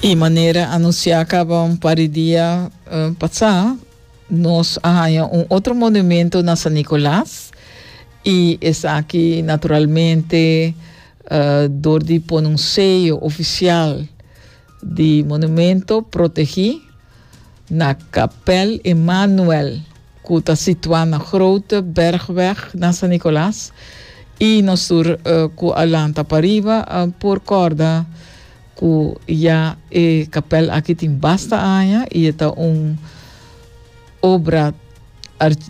Y manera anuncia caba un par de dia uh, pasa, nos a haya un otro monumento na San Nicolas y esaki naturalmente uh, door di pon un sello oficial di monumento protegi Na Kapèl Emanuel, ku ta situá na Grote Bergweg na San Nicolas, i nos tur ku a lanta pariba por kòrda ku ya e kapèl aki tin basta aña i e ta un obra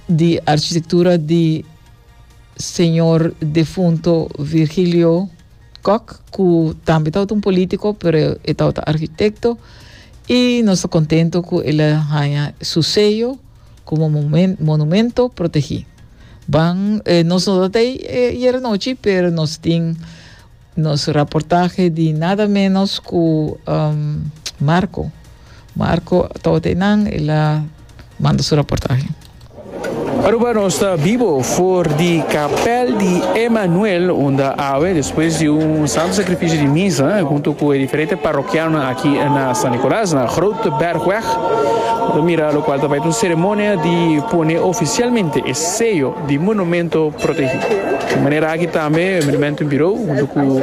di arkitektura di señor defunto Virgilio Kok, ku tambe tabata un polítiko, pero e tabata arkitekto, i nos ta kontentu ku el a haña su seyo komo monumento protegí. Ban e nos no tabata ei ayer anochi, pero nos tin nos raportahe di nada ménos ku Marco. Marco tawata e nan el a manda su raportahe. Aruba nos ta bibo for di Kapèl di Emanuel unda awe despues di un santu sakrifisio di misa huntu ku e diferente parokianonan aki na San Nicolas na Grote Bergweg, lo ta mira lokual ta bai ta un seremonia di pone ofisialmente e seyo di Monumento Protegí. Di manera aki tambe e Monumento Birou huntu ku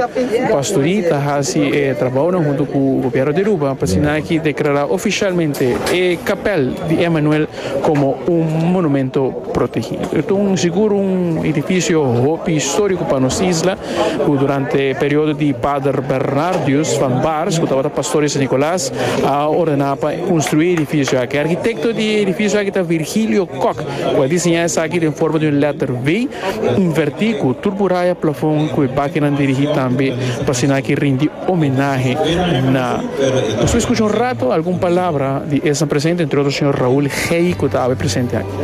Pastorie ta hasi e trabounan huntu ku Gobièrnu di Aruba pa asina aki deklará ofisialmente e Kapèl di Emmanuel komo un Monumento Protegí. E ta un sigur un edifisio hopi históriko pa nos isla ku durante e periodo di Pader Bernardius van Baars ku tabata pastor di San Nicolas a ordená pa konstruí e edifisio aki. Arkitekto di e edifisio aki ta Virgilio Kok. Cu a diseña esaki den forma di un letter V inverti cu turburaya plafon cu e bakenan dirigi tambe pa asina ki rindi homenahe na Nos ta escucha un rato algun palabra di esnan presente entre otro señor Raul Gey cu ta awe presente aki.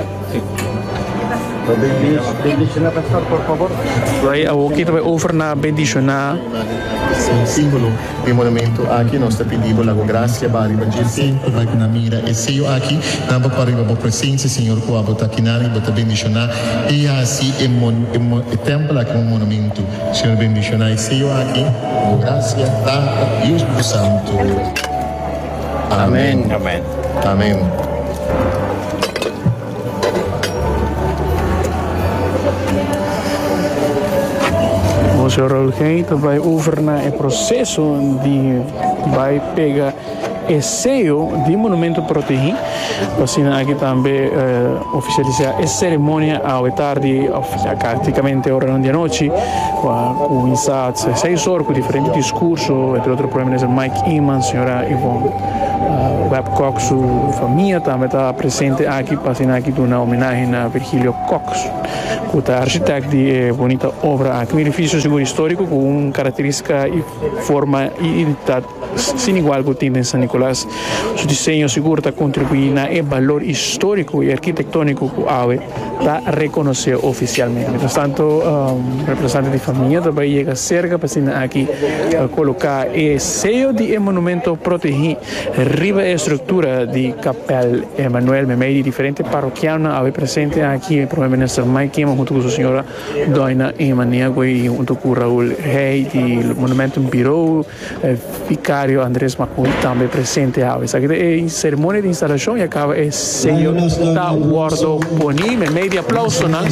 E monumentu aki nos ta pidi bo lago grasia ba riba dje sentro bay ku nan mira e seyo aki, nan bo pariba bo presensia Señor kua bo ta kinan y bo ta bendishoná y haci e e tempel aki un monumentu. Señor bendishoná e seyo aki ku bo grasia, Tata, y e Spiritu Santu. Amen. Amen. Monseigneur Rolgay ta bai over na e proceso di bai pega e sello di monumento protegi, asina aki tambe oficialisa e ceremonia awe tardi. Ya práktikamente oranan di anochi ku a kuminsá seis or ku diferente diskurso, entre otro Prome Minister Mike Eman, señora Yvonne Webb Cox su famia tambe ta presente aki pa asina aki duna homenahe na Virgilio Cox ku ta architect di e bonita obra aki, un edifisio sigur histórico ku un karakterístika y forma y identidad. Sin igual ku tin den San Nicolas, su diseño sigur ta kontribuí na e balor istoriko i arkitektoniko ku awe ta rekonosé ofisialmente. Mientras tanto, representante di famia ta bai yega serka pa asina aki koloká e seyo di e monumento protegí riba e struktura di Kapèl Emanuel. Meimei di diferente parokianonan awe presente aki, e Prome Minister Mike Kimmen huntu ku su señora Doina Ema Niagoy, huntu ku Raul Hey di Monumentum Birou, E Vicario Andres Macuy tambe presente awe. Esaki ta e ceremonia di instalacion y a caba e sello ta wordo poni. Me mei di aplausonan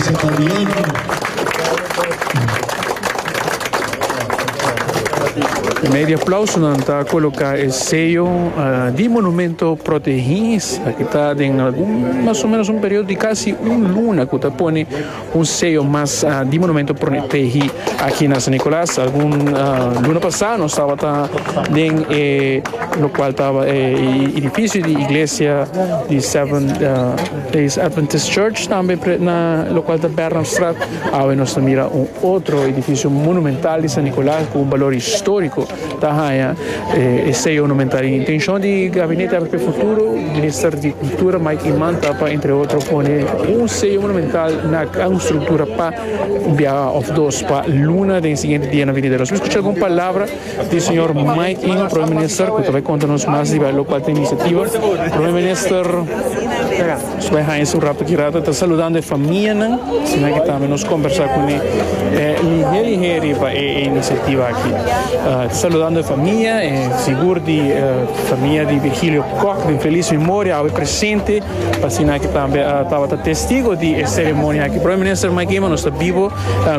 ta coloca e sello di monumento protegi. Esaki ta den algun mas o menos un periodo di casi un luna cu ta pone. Un seo mas di Monumento Protegí aki na San Nicolas. Algun luna pasá nos tabata den e lokual taba e idifisio di iglesia di Seven Days Adventist Church tambe pret na lokual ta Bernardstraat. Awe nos ta mira un otro idifisio monumental di San Nicolas ku un balor histórico. ta haña e seyo numental. E intenshon di Gabinete Arte pe Futuro, Minister di Kultura Mike Iman ta pa entre otro pone un seyo monumental na un struktura pa un biaha òf dos pa luna den e siguiente dianan venidero. Nos por skucha algun palabra di señor Mike Iman, Prome Minister, ku ta bai konta nos mas riba e lokal ta e inisyativa. Prome Minister. Scoe Heinz un rato ki rato ta saludando e famianan, asina ki tambe nos combersa cu ne e ligia ligia riba e iniciativa aki. Ta saludando e famia, e sigur di famia di Virgilio Kock den felis memoria awe presente, asina ki tambe tabata testigo di e ceremonia aki. Prome Minister Mike Eman, nos ta bibo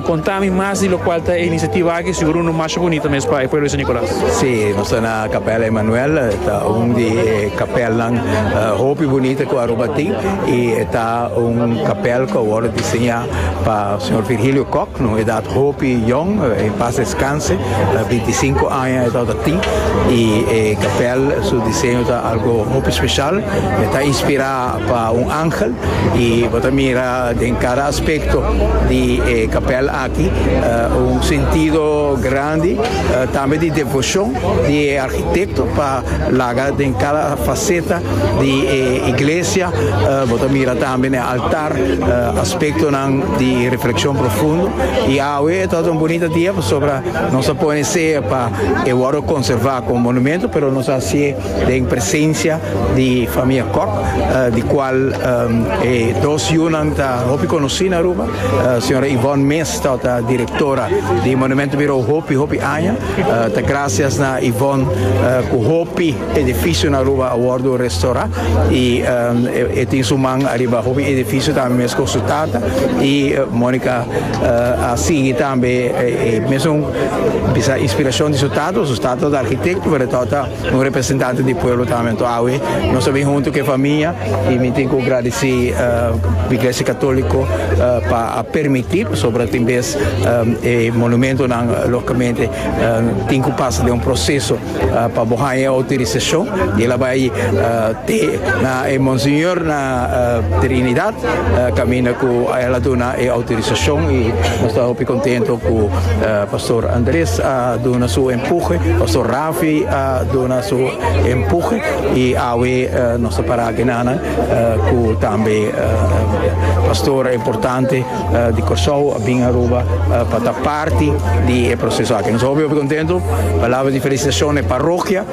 conta mi mas di locual ta e iniciativa aki, sigur uno masha bunito mes pa e pueblo di San Nicolas. Sí, nos ta na. Capella Emanuel ta un di e capelnan hopi bunita cu Aruba tin y e ta un capel cu a worde diseña pa Señor Virgilio Kok, na un edad hopi yong, en paz descanse, binti i sinku aña e tabata tin y e capel su diseño ta algo hopi special, e ta inspira pa un angel y bo ta mira den cada aspecto di e capel aki. Un sentido grandi tambe di devocion di e architecto pa laga den cada faceta di e iglesia. Bo ta mira tambe n'e altar aspectonan di reflexion profundo. Y awe e tabata un bunita dia pasobra nos a pone seña pa e worde conserva como monumento, pero nos a hacié den presencia di famia Kok di cual e dos yunan ta hopi conoci na Aruba, señora Yvonne Mees ta ta directora di Monumento Bureau hopi hopi aña, ta gracias na Yvonne cu hopi edificio na Aruba a wordo restora y e tin su man ariba hopi edificio tambe mes cu su tata y Monica a sigui tambe e mesun bisa inspiracion di su tata, su tata ta architecto pero e tata Un representante di pueblo ta awe awe nos a bin hunto cu e famia y mi tin cu gradici Iglesia Catolico pa a permiti pasobra tin bes e monumentonan logicamente tin cu pasa den un proceso pa bo haya e autorisacion y el a bay te na e Monseñor na Trinidad caminda cu el a duna e autorisacion y nos ta hopi contento cu Pastor Andres a duna su empuje Pastor Raaf. Fi a duna su empuje y awe nos ta para genanan cu tambe pastor importante di Corsou a bin Aruba pa ta parti di e proceso aki. Nos hopi hopi contento. Palabra di felicitacion na e parrokia.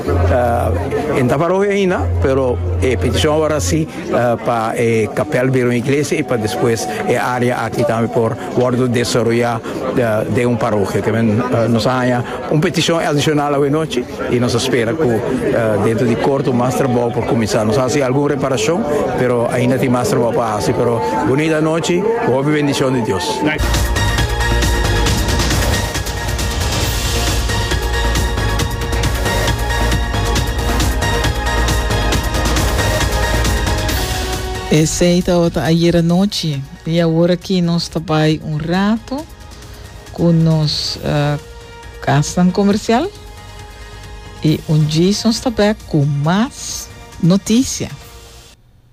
E no ta parrokia aina pero e peticion awor a si pa e capel bira un iglesia y pa despues e area aki tambe por Wordo desaroyá den un parokia. Ta bini nos a haña un petishon adishonal awe nochi i nos a spera ku dentro di korto mas trabou por kuminsá. Nos a hasi algun reparashon pero ainda tin mas trabou pa hasi. Pero bunita nochi ku hopi bendishon di Dios. Esei tabata ayera nochi. I awor aki nos ta bai un rato ku nos kasnan komersial i un djis nos ta bèk ku mas notisia.